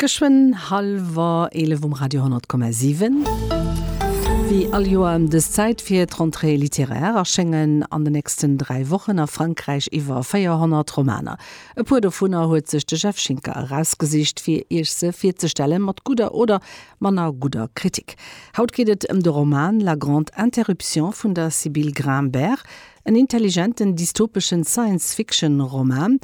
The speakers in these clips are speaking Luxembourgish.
Geschwënn hallwer 11 um Radio 10,7. Wéi all Joer ëm dës Zäit fir d'Rentrée littéraire erschéngen an de nächsten dräi Wochen a Frankräich iwwer 400 Romaner. E puer dovunner huet sech de Jeff Schinker erausgesicht, fir Iech se virzestellen, mat gudder oder manner gudder Kritik. Haut geet et ëm de Roman La grande interruption vun der Sybille Grimbert. En intelligenten dystopeschen Science-Fiction-Roman,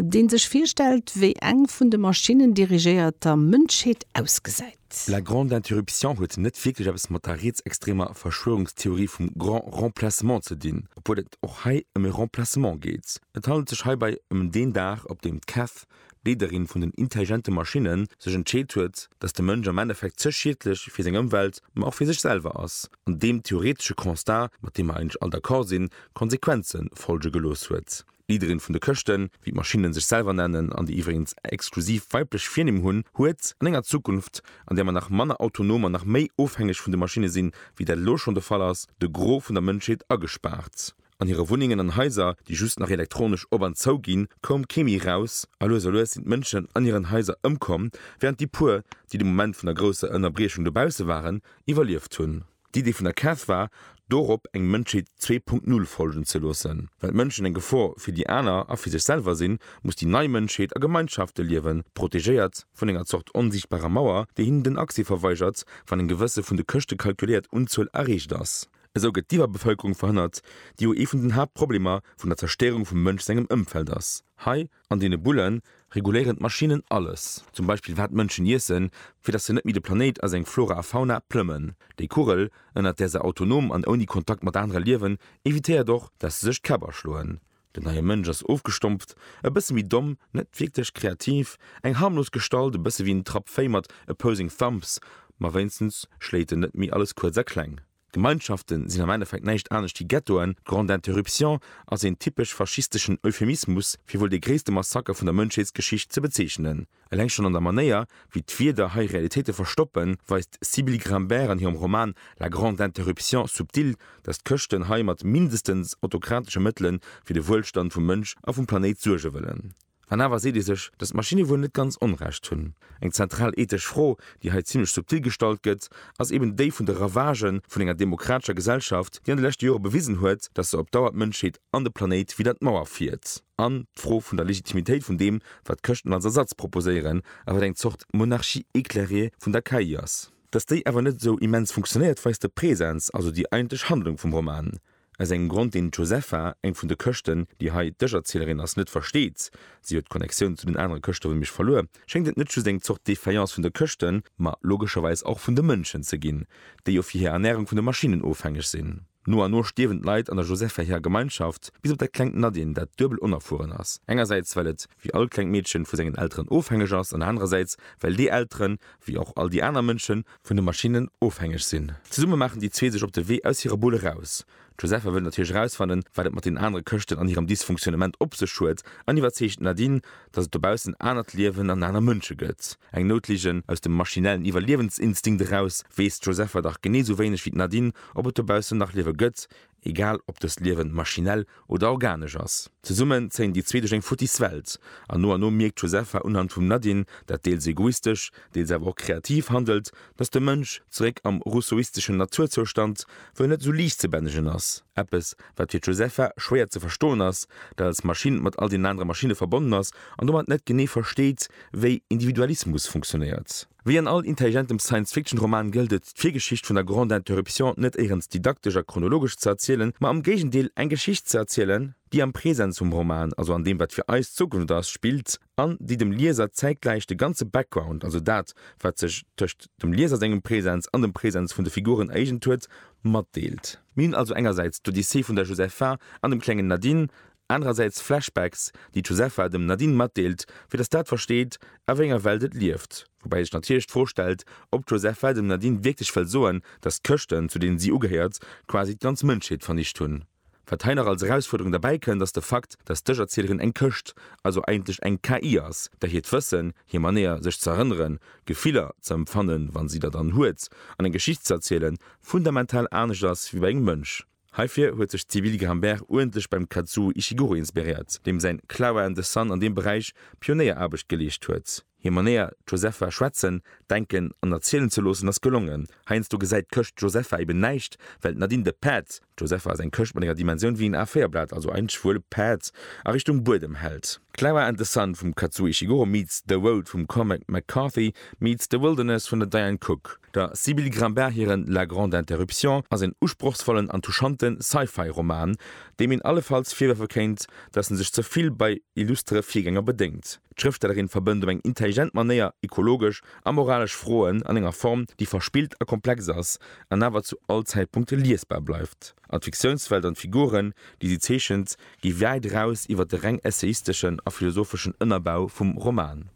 dee sech virstellt, wéi eng vun de Maschinnen dirigéierter Mënschheet ausgesäit. La Grande Interruption huet net wierklech eppes mat der rietsextremer Verschwörungstheorie vum Grand Remplacement ze dinn, obwuel et och hei ëm e Remplacement geet. Et handelt sech heibai ëm deen Dag, op deem d'Kath, d'Leederin vun den intelligente Maschinnen, sech entscheet huet, datt de Mënsch am Endeffekt ze schiedlech fir seng Ëmwelt, ma och fir sech selwer ass. an deem theoretesche Constat, mat deem mer eigentlech all d'accord sinn, Konsequenze folge gelooss huet. D'Leaderin vun de Këschten, wéi d'Maschinne sech selwer nennen, an déi iwwregens exklusiv weiblech Virnimm hunn, huet an enger Zukunft, an där mer nach manner autonom an nach méi ofhängeg vun de Maschinne sinn, wéi dat elo schonn de Fall ass, de Gros vun der Mënschheet agespaart. An hire Wunnengen an Haiser, déi just nach elektronesch op an zou ginn, koum kee méi eraus a lues a lues sinn d'Mënschen an hiren Haiser ëmkomm, während déi puer, déi de Moment vun der grousser Ënnerbriechung dobausse waren, iwwerlieft hunn. D'Idee vun der Cath war, dorop eng Mënschheet 2.0 folgen ze loossen. Well d'Mënschen eng Gefor fir déi aner a fir sech selwer sinn, muss déi nei Mënschheet a Gemeinschafte liewen, protegéiert vun enger Zort onsichtbarer Mauer, déi hinnen den Accès verweigert, wann eng gewësse vun de Këschte calculéiert Unzuel erreecht ass. Esou gëtt d'Iwwerbevëlkerung verhënnert, déi jo ee vun den Haaptproblemer vun der Zerstéierung vum Mënsch sengem Ëmfeld ass. Hei an deene Bulle reguléieren d'Maschinnen alles, zum Beispill wat d'Mënschen iessen, fir datt se net méi de Planéit a seng Flora a Fauna plëmmen. Déi Kugel, ënnert där se autonom an ouni Kontakt mat anere liewen, evitéiert och, datt se sech d'Käpp aschloen. Den neie Mënsch ass ofgestompft, e bësse méi domm, net wierklech kreativ, eng harmlos Gestalt, e bësse wéi en Trapp Véi mat opposing thumbs, ma wéinstens schléit en net méi alles kuerz a kleng. D'Gemeinschafte sinn am Endeffekt näischt anescht wéi Ghettoen, d'Grande Interruption ass een typesch faschisteschen Euphemismus, fir wuel dee gréisste Massaker vun der Mënschheetsgeschicht ze bezeechnen. Eleng schonn an der Manéier, wéi d'Wierder hei Realitéite verstoppen, weist d'Sybille Grimbert an hirem Roman La grande interruption subtile, datt d'Chrëschten hei mat mindestens autokratesche Mëttele fir de Wuelstand vum Mënsch a vum Planéit suerge wëllen. An awer seet ee sech, datt d'Maschinne wuel net ganz Onrecht hunn. Eng zentral ethesch Fro, déi hei zimmlech subtil gestallt gëtt, ass eben déi vun de Ravagë vun enger demokratescher Gesellschaft, déi an de leschte Jore bewisen huet, datt se op Dauer d'Mënschheet an de Planéit widder d'Mauer fiert. An d'Fro vun der Legitimitéit vun deem, wat d'Chrëschten als Ersatz proposéieren, a wat eng Zort Monarchie éclairée vun der KI ass. Datt déi awer net esou immens funktionéiert, weist de Präsens, also déi eigentlech Handlung vum Roman. Aus engem Grond, deen d'Josepha, eng vun de Chrëschten, déi hei d'Ëscherzielerin ass, net versteet, si huet d'Connectioun zu den anere Chrëschte wéi mech verluer, schéngt et net just eng Zort Défaillance vun de Chrëschten, ma logescherweis och vun de Mënschen ze ginn, déi jo fir hir Ernärung vun de Maschinnen ofhängeg sinn. No an no stierwen d'Leit an der Josepha hirer Gemeinschaft, bis op dat klengt Nadine, dat duebel onerfueren ass, engersäits well et, wéi all klengt Meedchen, vu sengen Elteren ofhängeg ass, an anerersäits well déi Elteren, wéi och all déi aner Mënschen, vun de Maschinnen ofhängeg sinn. Zesumme maachen déi zwee sech op de Wee aus hirer Bull eraus. D'Josepha wëll natierlech erausfannen, wat et mat den anere Këschten an hirem Dysfunktionnement op sech huet, an iwwerzeegt d'Nadine, dass et dobaussen anert Liewen an aner Mënsche gëtt. Eng Noutligen, aus dem maschinellen Iwwerliewensinstinkt eraus, weess d'Josepha dach genee sou wéineg wéi d'Nadine, ob et dobaussen nach Liewe gëtt, egal ob dëst Liewen maschinell oder organesch ass. Zesummen zéien déi zwee duerch eng futtis Welt, an no an no mierkt d'Josepha unhand vum Nadine, dat deels egoistesch, deels awer och kreativ handelt, dass de Mënsch, zeréck am rousseauisteschen Naturzoustand, wuel net esou liicht ze bännegen ass. Eppes, wat fir d'Josepha schwéier ze verstoen ass, dat als Maschinn mat all deenen anere Maschinne verbonnen ass an domat net genee versteet, wéi Individualismus funktionéiert. Wéi an all intelligentem Science-Fiction-Roman gëllt et, d'Virgeschicht vun der Grande Interruption net éirens didaktesch a chronologesch ze erzielen, ma am Géigendeel eng Geschicht ze erzielen, déi am Presens vum Roman, also an deem wat fir eis d'Zukunft ass, spillt an déi dem Lieser zäitgläich de ganze Background, also dat wat sech tëscht dem Lieser sengem Presens an dem Presens vun de Figuren ereegent huet, matdeelt. Mir hunn also engersäits d'Odyssee vun der Josepha an dem klengen Nadine, Anerersäits Flashbacks, déi d'Josepha dem Nadine matdeelt, fir dass dat versteet, a wéi enger Welt et lieft. Woubäi sech natierlech d'Fro stellt, ob d'Josepha dem Nadine wierklech wëll soen, dass d'Chrëschten, zu deenen si ugehéiert, quasi d'ganz Mënschheet vernicht hunn. Wat hei nach als Erausfuerderung derbäi kënnt, ass de Fakt, dass d'Ech-Erzielerin eng Chrëscht, also eigentlech eng KI ass, där hiert Wëssen, hir Manéier, sech z'erënneren, Gefiller ze empfannen, wa si der dann huet, an eng Geschicht z'erzielen, fundamental anescht ass wéi bei engem Mënsch. Heifir huet sech d'Sybille Grimbert uerdentlech beim Kazuo Ishiguro inspiréiert, deem säin Clara and the Sun an deem Beräich Pionéieraarbecht geleescht huet. Hir Manéier, d'Josepha schwätzen, denken an erzielen ze loossen, ass gelongen. Heiansdo gesäit d'Këscht d'Josepha eben näischt, well d'Nadine de Päerd, d'Josepha ass eng Këscht mat enger Dimensioun wéi en A-Véierblat, also ein schwuele Päerd, a Richtung Buedem hält. Clara and the Sun vum Kazuo Ishiguro meets The Road vum Cormac McCarthy meets The Wilderness vun der Diane Cooke. Der Sybille Grimbart hiren La grande interruption ass een usprochsvollen an touchante Sci-Fi-Roman, deem een allefalls virwërfe kéint, datt en sech ze vill bei illustere Virgänger bedéngt. D'Schrëftstellerin verbënnt op eng intelligent Manéier ekologesch a moralesch Froen an enger Form, déi verspillt a komplex ass an awer zu all Zäitpunkt liesbar bleift. An d'Fiktiounswelt an d'Figuren, déi si zeechent, Gi wäit eraus iwwer de reng essayisteschen a philosopheschen Ënnerbau vum Roman.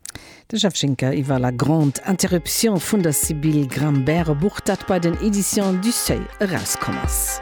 De Jeff Schinker iwwer La grande interruption vun der Sybille Grimbert, e Buch, dat bei den Editions du Seuil erauskomm ass.